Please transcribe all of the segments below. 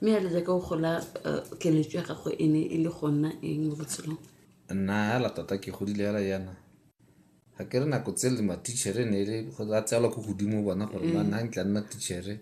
mme a le jaaka o gola eh, keletso ya gago e ne e le go nna eng mo botshelong nna hela tota ke godile hela yana ga ke re nako tse le matichere ne e le go a tseelwa ko godimo bona gore ba nna ntla nna tichere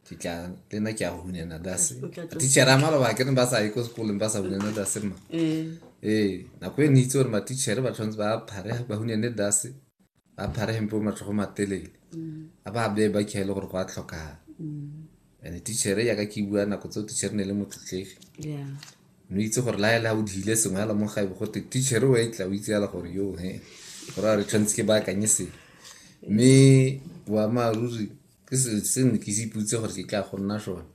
ke tla le nna ke a hunyana dase O tla tswa- tichere a maloba ke ne ba sa ye ko sekolong ba sa hunyana dase ma um ee nako e ne itse gore matichere ba tshwanetse ba phare ba hunyane dase ba phare hempe o matlhogo matelele a ba beye ba khaele gore go a tlhokagala and tichere yaka ke bua nako tseo tichere ne le motlotlegi no itse gore la ela o dile sengwe ala mo gaibe gote tichere o etla o itse ala gore yo he gore a re tshwanetse ke baakanye sengwe mme boammaaruri ke selo se ne ke se iputse gore ke tla go nna sone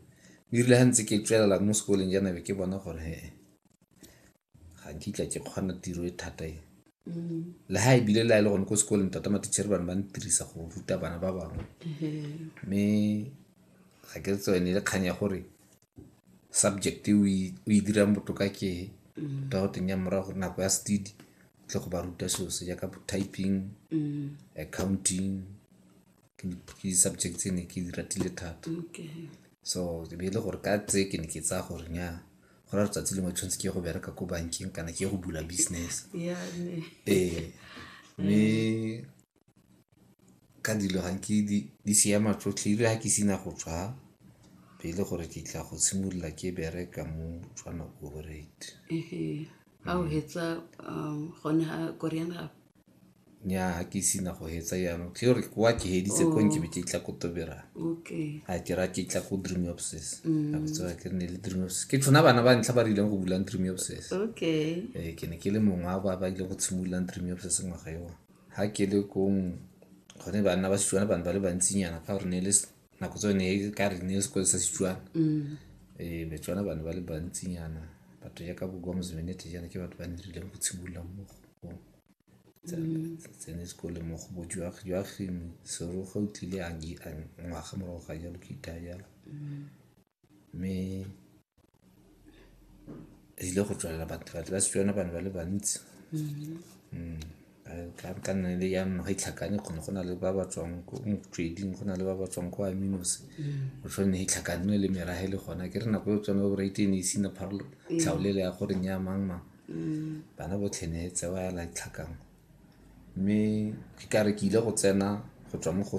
erile ga ntse ke tswelela mo sekoleng janabe ke bona gore he ga nkitla ke kgona tiro e thata e le ha ebile le a e le gone ko sekolong tota matichere bane ba ntirisa go ruta bana ba bangwe mme ga ke tsone ne le kgang ya gore subject o e dirang botoka ke ta go teng ya morago gore nako ya stedi tle go ba ruta selo se jaaka typing mm. accounting ke di-subject tse ne ke di ratile thata so e be e le gore ka tse ke ne ke tsaya gore nya go ra letsatsi lengwe tshwanetse ke go bereka ko bankeng kana ke go bula business ee mme ka dilo ga ke di siama tsotlhe ile ga ke sena go tswa be e le gore ke tla go simolola ke bereka mo tswana operate ga o hetsa um, gone ga koreana nyaa ke sina go hetsa jaanong ke gore kwa ke heditse ko nke be ke tla ko toberang okay a ke ra ke tla ko dream obses a botsewa ke ne le dream obses ke tshwana bana ba ntlha ba re ileng go bulang dream obses okay ee ke ne ke le mongwe wa ba ba ile go tshimololang dream obses ngwaga eo ga ke le kong gone banna ba setswana bane ba le bantsinyana ka gore ne e le nako tsone e ka re ne sekolo sa setswana mm. ee betswana bane ba le bantsinyana batho ya ka bokwa mosemenete jana ke batho ba nerileng go tshimolola mo go mm. tsene sekole mo go bojuagi joaging seroga o tlile a ngwaga morago ga jalo ke itha jalo mm. Mme e tlile go tswelela batho batho ba Setswana ba ne ba le bantsi ka nna le jaanong ga itlhakane kgone go na le ba ba tswang ko motsweding go na le ba ba tswang ko aminos go tshwane itlhakane le merage le gona ke re nako e tswana bo rate ne isina pharolo tlhaolele ya gore nya mang mang bana botlhe ne tse ba yala itlhakang mme ke kare ke ile go tsena go tswa mo go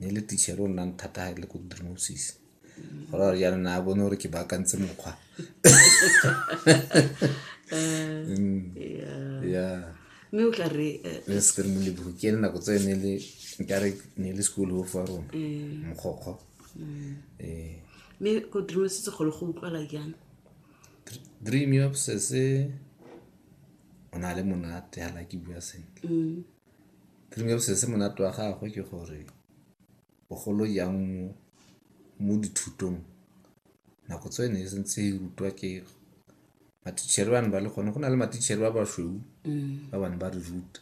ne le teacher o nnang thata ha le ko drimosis go ra gore jaanong a bone gore ke baakantse mokgwa ya mme o tla re eh, le se re moleburu ke ene nako tse ne le nkare ne le school ho fa rona eh, mokgokgo mm. eh mme ko dream se se golo go utlwala jang dream yo se se o na le monate ha la ke bua sentle mm. Primary se monate wa gagwe ke gore bogolo jang mo dithutong nako tse ne e santse e rutwa ke matitšhere ba ne ba le gone go na le matitšhere ba basweu ba bane ba re ruta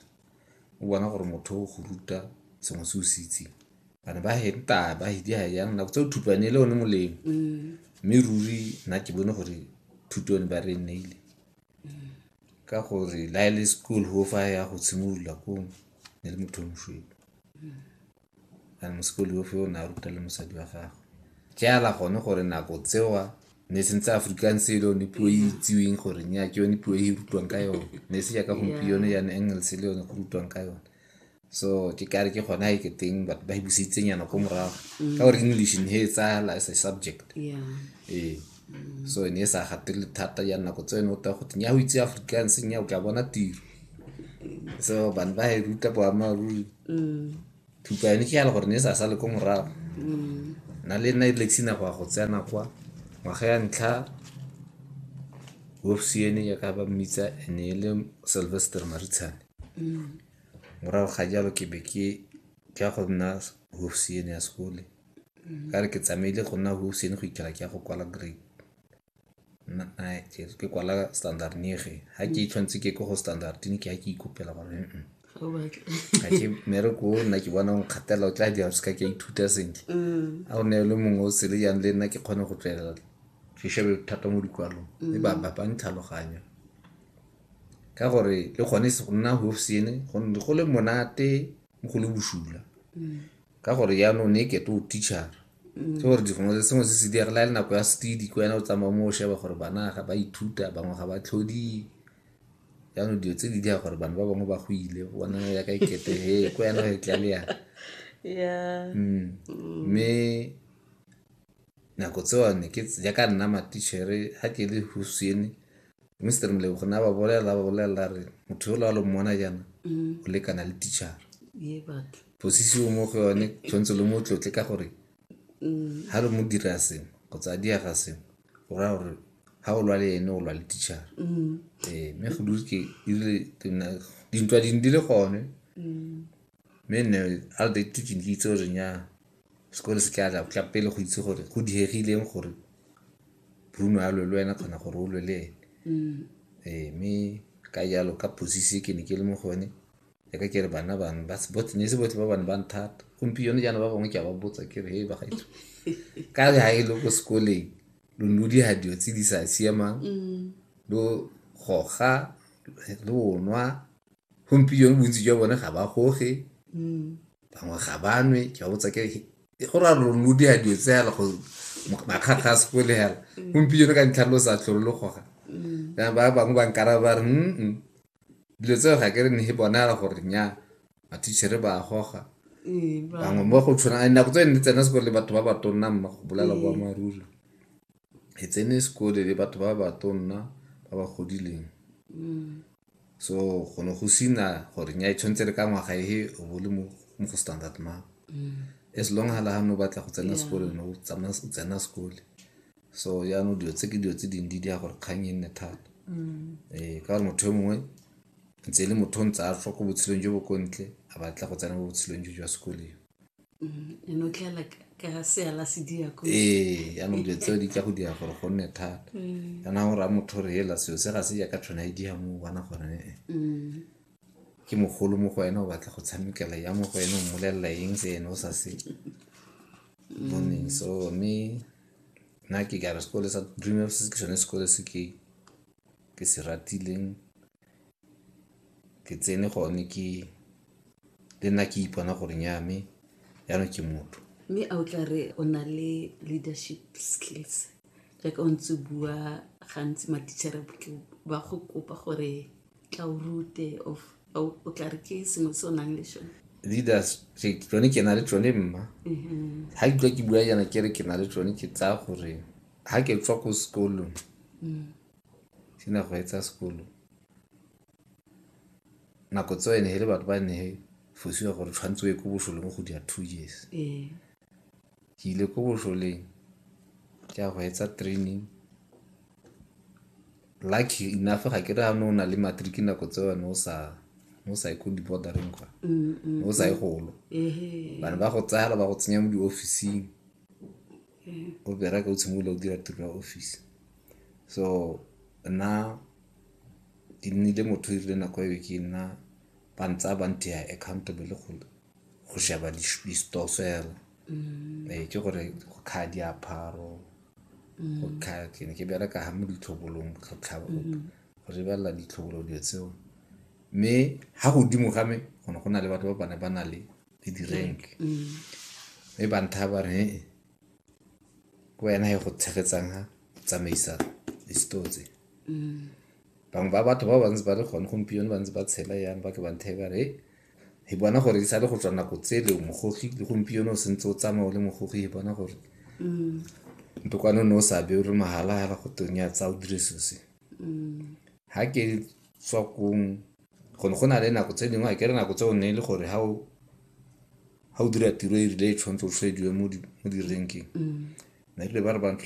o bona gore motho o go ruta sengwe se o se itseng bane ba henta ba hidiga jang nako tse o thupane le one molemo mme ruri nna ke bone gore thuto yone ba re nneile ka gore la e le school ho fa ya go tshimolola ko ne le motho moshweu and mosekoli ofe o ne a ruta le mosadi wa gagwe ke ala gone gore nako tsewa ne sentse african se yone puo e itsiweng gore nya ke yone puo e rutwang ka yone ne se jaaka gompieno ya ne english le yone go rutwang ka yone so ke kare ke gona e ke teng batho ba e busitseng yana ko morago mm. ka gore english ne e tsala as a subject ee mm. so ne e sa gatele thata ya nako tse ne o ta go teng ya go itse afrikaans nya o ka bona tiro so bane ba e ruta boamaruri mm. thupa yone ke yale gore ne e sa sale ko morago na le nna e lexina go ya go tsena kwa ngwaga ya ntlha wofsiene ya ka ba mmitsa ene e le sylvester maritshane Morago ga jalo ke be ke ya go nna hofisiene ya sekole. Ka re ke tsamaile go nna hofisiene go ikela ke ya go kwala grade ke kwala standard nege. Ga ke itlhometse ke ko go standard ke ya ke ikopela gore ga ke mmereko o nna ke bona o nkgatelela o tla dira seka ke a ithuta sentle. A o ne le mongwe o sele jang le nna ke kgone go tswelela ke shebe thata mo dikwalong mme ba ba ntlhaloganya. ka gore le gone se go nna hofsene go ne go le monate mo go le bosula ka gore yaanong ne e kete o teachara ke gore dikgongwe se sengwe se se diagela le nako ya stedi ko yana o tsamaya mo o sheba gore bana ga ba ithuta bangwe ga ba tlhodi jaanong dilo tse di dira gore bana ba bangwe ba go ile bona ya ka ikete he ko yana e tla le yana yeah Mm. mme nako tsewane ke jaaka nna matichere ga ke le hosiene mr mlebogo na ba bolela ba bolela re motho yola wa lo mmona jaana Mm. o lekana le tichara ye batho posisi o mo go yone tshwanetse lo mo tlotle ka gore Mm. ga lo mo dira sengwe kgotsa a diaga sengwe go raya gore ga o lwa le ene o lwa le tichara Mm. ee mme go dule ke erile dintwa dingwe di le gone Mm. mme nne a re date ke ne ke itse gore nya sekolo se tla tla pele go itse gore go diegileng gore bruno a lwe le wena kgona gore o lwe le ene Mm. ee mme ka jalo ka posisi e ke ne ke le mo go yone ya ka ke re bana bangwe ba se- botlhe- ne se botlhe ba bane ba nthata gompieno jaana ba bangwe ke a ba botsa ke re he bagaetso ka re ga e le ko sekoleng lo ne lo diga dilo tse di sa siamang Mm. lo goga lo nwa gompieno bontsi jwa bone ga ba goge bangwe ga ba nwe ke ba botsa ke go ra lo lo dira dilo tse yana go makgakga a sekole yana gompieno ka ntlha lo sa tlholo lo goga ya ba bangwe ba nkara ba re mm dilo tseo ga ke re ne bona yana gore nya matitšhere ba goga bangwe mo go tshwana nako tse ne tsena sekole le batho ba ba tonna mma go bolela boammaaruri e tsene sekole le batho ba ba tonna ba ba godileng So go ne go sina gore nya e tshwanetse re ka ngwaga ehe o bo le mo go standard mang. Mm. As long ha la ha no batla go tsena sekolo no tsamaya o tsena sekole. So jaanong dilo tse ke dilo tse dingwe di dira gore kgang e nne thata. Mm. Ee ka gore motho yo mongwe ntse e le motho o ntse a tlhoko botshelong jo bo ko ntle a batla go tsena mo botshelong jo jwa sekole. Mm, ee yaanong dilo tseo di ka go dira gore go nne thata mm. kana gore a motho re ela seo se ga se jaaka tshwana e diga mo bona gore ee mm. ke mogolo mo go ena o batla go tshamekela ya mo go ena o mmolelela eng se ene o sa se boneng so mme nna ke kare sekole sa dream se ke sone sekole se ke ke se ratileng ke tsene gone ke le nna ke ipona gore nya me jaanong ke motho mme a o tla re o na le leadership skills jaaka o ntse bua gantsi matitšhere ba go kopa gore tla o rute of o tla re ke sengwe se o nang le sone leaders tsone ke na le tsone mma ga mm-hmm. ke tlwa ke bua jana ke re ke na le tsone ke tsaya gore ga ke tswa ko sekolong mm. ke ne go etsa sekolo. Nako tseo e ne e le batho ba ne fosiwa gore tshwanetse o ye ko bošoleng go dira two years. Ke ile ko bošoleng ke a go etsa training. Lucky enough ga ke re ha ne o na le matric nako tseo ne o sa ne o sa ye ko di-border-eng kwa, ne o sa ye golo. Ba ne ba go tsaya fela ba go tsenya mo di-office-ing o bereka o simolola o dira tiro ya office. So nna ke nnile motho o dirile nako eo ke nna ba ntsaya ba nteya accountable go sheba di-stores fela. Ee, ke gore go kgaya diaparo, go kgaya ke ne ke bereka ha mo ditlhobolong go lebelela ditlhobolo dilo tseo. Mme ha godimo ga me go ne go na le batho ba bane ba na le di-rank mme ba nthaya ba re . ke wena e go tshegetsang ha tsamaisa di-store tse bangwe ba batho ba bantsi ba le gone gompieno ba ntse ba tshela yang ba ke ba nthee ba re "Hey, e bona gore e sa le go tswa nako tsele o mogogi le gompieno o sentse o tsamaya o le mogogi e bona gore ntokwane o ne o sa be o re mahala hala go teng ya tsa o dire sose ga ke tswa kong Go ne go na le nako tse dingwe a kere nako tseo ne e le gore ga o dira tiro e rile e tshwanetse o tshwediwe mo di-rank-eng ne rile ba re ba